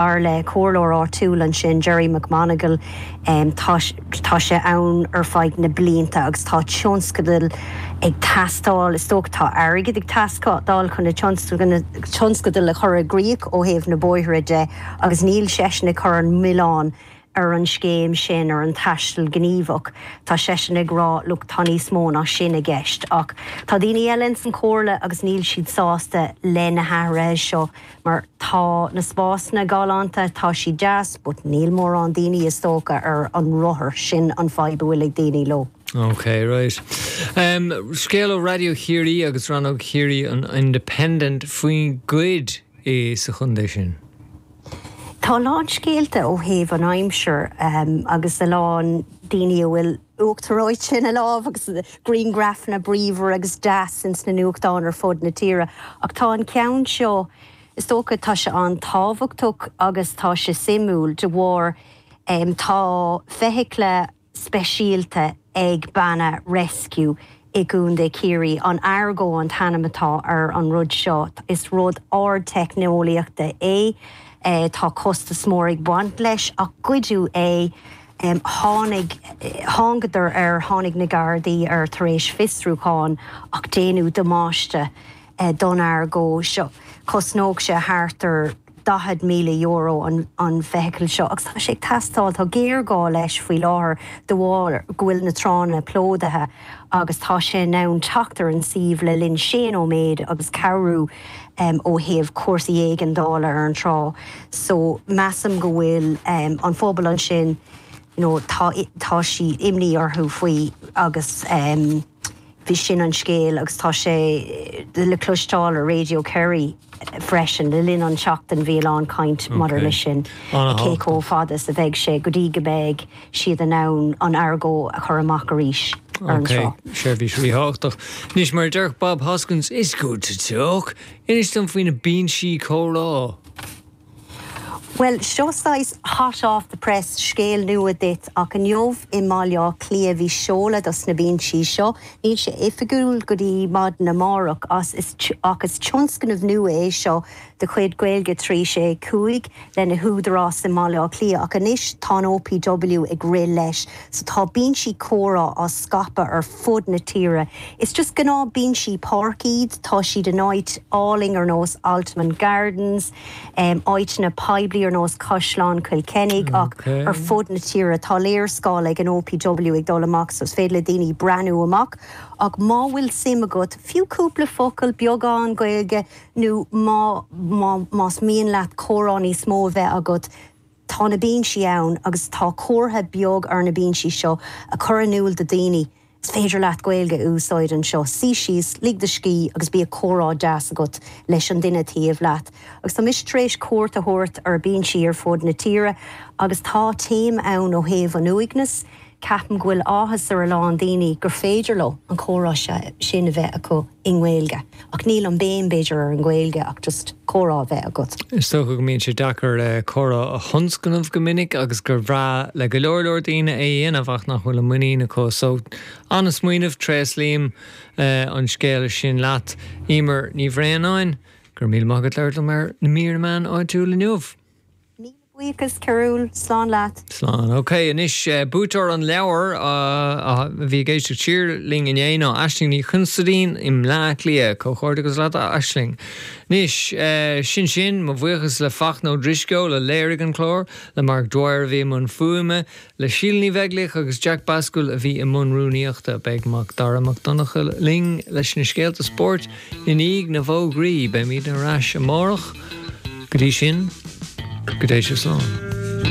Dar le comhairleoir áitiúil ansin, Gerry McMonagle, tá sé ann ar feadh na blianta agus tá tionscadail ag teastáil, is dócha, tá airgead ag teastáil chun na tionscadail a chur i gcrích ó thaobh na bóithre de agus níl seisean ag cur an mhilleáin ar an scéim sin, ar an taisteal gníomhach, tá seisean ag rá, look, tá níos mó ná sin i gceist. Ach tá daoine eile ins an Chomhairle agus níl siad sásta le na hathruithe seo mar tá na spásanna galánta, tá siad deas but níl mórán daoine is dócha ar an rothar, sin an fadhb a bhfuil ag daoine leo. OK, right. Scéal ó Raidió Chiarraí agus Rannóg Chiarraí an Independent faoin ngoid. é sa chondae sin. Tá a lán scéalta ó thaobh an aimsir agus a lán daoine a bhfuil uachtar reoite ins a lámh agus griangrafanna bríomhar agus deas ins na nuachtáin ar fud na tíre ach tá an ceann seo, is dócha, tá sé an-tábhachtach agus tá sé suimiúil de bharr tá feithicle, speisialta ag Banna Rescue i gContae Chiarraí. An Argo an t-ainm atá ar an rud seo. Is rud ardteicneolaíochta é. Tá costas mór ag baint leis ach goideadh é. Tháinig, thángadar air, tháinig na Gardaí air tar éis fiosrúcháin ach déanadh damáiste don Argo seo. Chosnódh sé thart ar. €40,000 an feithicil seo agus tá sé ag teastáil, tá géarghá leis faoi láthair de bharr go bhfuil na tránna plódaithe agus tá sé in ann teacht ar an suíomh le linn sé nóiméad agus cabhrú ó thaobh cúrsaí éigeandála ar an trá so measaim go bhfuil an phobal ansin you know tá, tá siad imní orthu faoi agus. Bhí sin an scéal, agus tá sé le cloisteáil ar Radio Kerry freisin, le linn an tseachtain bhí a lán caint maidir leis sin, cé chomh fada is a bheidh sé go dtí go mbeidh siad in ann an Argo a chur amach arís ar an trá. Ok, seirbhís ríthábhachtach. Anois, mar a déarfadh Bob Hoskins, It's good to talk! Inis dom faoi na binsí comhrá! Bhuel, seo saghas hot off the press scéal nua duit, ach inniu i mBaile Átha Cliath bhí seoladh dos na binsí seo. Níl sé oifigiúil go dtí maidin amárach ach is tionscnamh nua é seo de chuid Gaeilge 365 le na húdaráis i mBaile Átha Cliath ach anois tá an OPW ag rith leis. So tá bínsí comhrá á scaipeadh ar fud na tíre. Is just gnáth bínsí páirc iad, tá siad in áit álainn ar nós Altamont Gardens, em, áíteanna poiblí ar nós Caisleán Chill Chainnigh ach ar fud na tíre. Tá léarscáil ag an OPW ag dul amach so is féidir le daoine breathnú amach ach má bhfuil suim agat, fiú cúpla focal, beagán Gaeilge nó má, má, más mian leat comhrá níos mó a bheith agat, Tá na bínsí ann agus tá comhartha beag ar na bínsí seo a chur in iúl do daoine, is féidir leat Gaeilge a úsáid anseo, suí síos, lig do scíth agus bíodh comhrá deas agat leis an duine taobh leat. Agus tá mise tar éis cuairt a thabhairt ar bínsí ar fud na tíre agus tá téama ann ó thaobh an uaigneas, Ceapaim go bhfuil áthas ar a lán daoine gur féidir leo an comhrá sin a bheith acu i nGaeilge, ach níl an béim, b'fhéidir, ar an nGaeilge ach just comhrá a bheith agat. Is dócha go mbíonn sé deacair comhrá a thionscnamh go minic agus gur bhreá le go leor leor daoine é a dhéanamh ach nach bhfuil an muinín acu. So, an-smaoineamh, tréaslaím an scéala sin leat. Emer Ní Bhraonáin, go raibh míle maith agat as labhairt liom ar na mBeo ar Éigean meán áitiúil inniu. Buíochas, a Chormaic, slán leat. Slán. Ok, anois buaiteoir an leabhair a bhí i gceist ag Tiarna linn inné ná Aisling Ní Chonsaidín i mBleá Cliath. Comhghairdeachas leat a Aisling. Anois, sin sin, mo bhuíochas le Fachtna Ó Drisceoil a léirigh an clár, le Mark Dwyer a bhí i mbun fuaime, Le Síle Ní Bheaglaoich agus Jack Bascúill a bhí i mbun rúnaíochta. Beidh Mac Dara Mac Donncha linn leis na scéalta spóirt i ndiaidh na bhfógraí. Beimid ar ais amárach. Go dtí sin, go dté sibh slán.